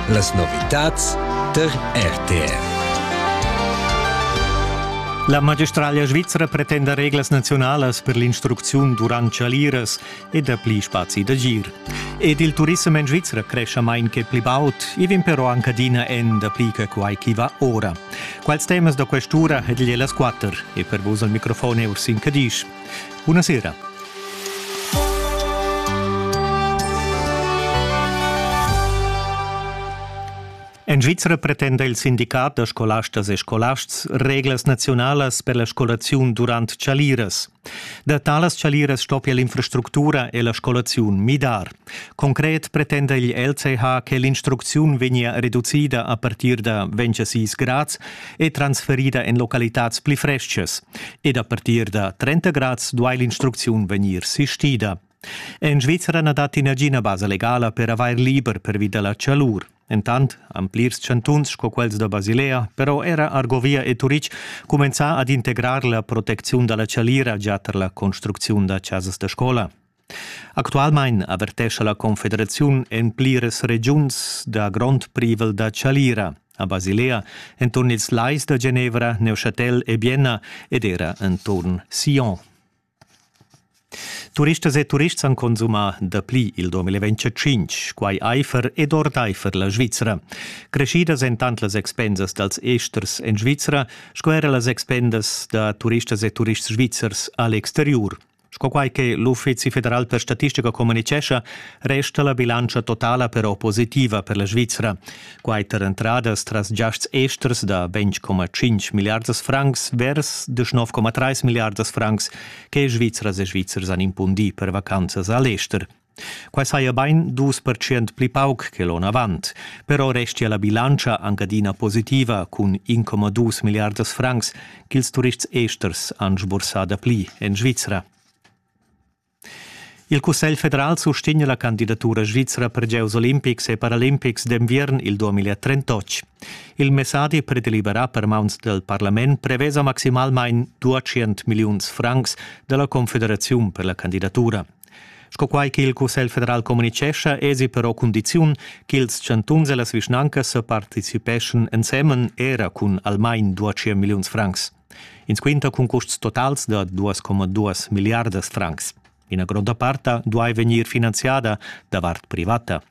Las novitads tar RTR. La magistraglia svizra pretenda reglas naziunalas per l'instrucziun durant chaliras e dapli spazi d'agir. Ed il turissem en Svizra crescia main che pli baud, i vegn però anc adina en dapli che quai chi va ora. Quals temas da questura ed igl e las quatter e per vus al microfon Ursin Cadisch. Buonasera. En Svizra pretenda il sindicat da scolastas e scolasts reglas naziunalas per la scolaziun durant chaliras. Da talas chaliras stoppia l'infrastructura e la scolaziun midar. Concret pretenda il LCH che l'instrucziun vegnia reducida a partir da 26 grads e transferida en localitads pli frestgas. Ed a partir da 30 grads duai l'instrucziun vegnir sistida. En Svizzera na datti nagina basa legala per avair liber pervi da la chalur. Entant han plirs chantuns sco quels da Basilea, però era Argovia e Turic cumenzà ad integrar la protecziun da la chalira gia tar la construcziun da chasas da scola. Actualmein avertescha la Confederaziun en pliras regiuns da grond privel da chalira a Basilea enturn ils lais da Genevra, Neuchâtel e Bienna ed era enturn Sion. Turistas e turists han consumà dapli il 2025, quai aifer ed ordaifer la Svizra. Creschidas èn tant las expensas dals esters en Svizra sco era las expensas da turistas e turists svizzers a l'exteriur. Sco quai che l'Uffizi federal per statistica communitgescha, resta la bilantscha totala però positiva per la Svizra. Quai tar entradas tras giasts esters da 20,5 miliardas francs vers 19,3 miliardas francs che Svizras e Svizzers han impundì per vacanzas a l'ester. Quai saja bain dus percent pli pauc che l'onn avant, però restia la bilantscha anc adina positiva cun 1,2 milliardas francs ch'ils turists esters han sbursà dapli en Svizra. Il Cussegl federal sustegna la candidatura svizra per gieus olimpics e paralimpics d'enviern il 2038. Il messadi predeliberà per mauns del parlament prevesa maximalmain 200 milliuns francs dalla Confederaziun per la candidatura. Sco quai ch'il Cussegl federal communitgescha èsi però cundiziun ch'ils chantuns e las vischnancas participeschan ensemen era cun almain dua tschient milliuns francs. Ins quinta cun custs totals da 2,2 milliardas francs. Ina gronda part duai vegnir finanziada davart privata.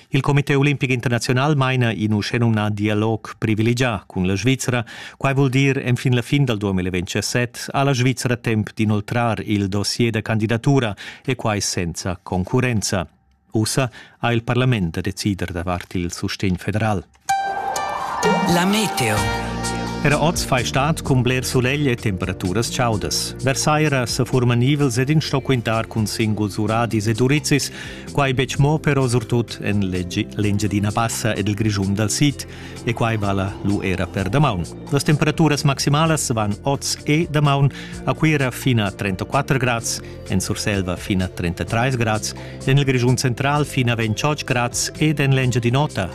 Il Comité olimpic internaziunal maina in uschenumnà dialog privilegià cun la Svizra. Quai vul dir enfin la fin dal 2027 ha la Svizra temp d'inoltrar il dossier da candidatura e quai senza concurrenza. Ussa ha il parlament da decider davart il sustegn federal. La meteo. Era oz fai stat cun bler sulegl e temperaturas chaudas. Versaira sa furman nivels ed in sto quintar cun singuls uradis ed urizis, quai betg mo però surtut en l'Engiadina Bassa ed il Grischun dal sid, e quai vala lu era per damaun. Las temperaturas maximalas van oz e damaun a Cuira fino a 34 grads, en Surselva fino a 33 grads, en il Grischun central fino a 28 grads ed en l'Engiadin'Ota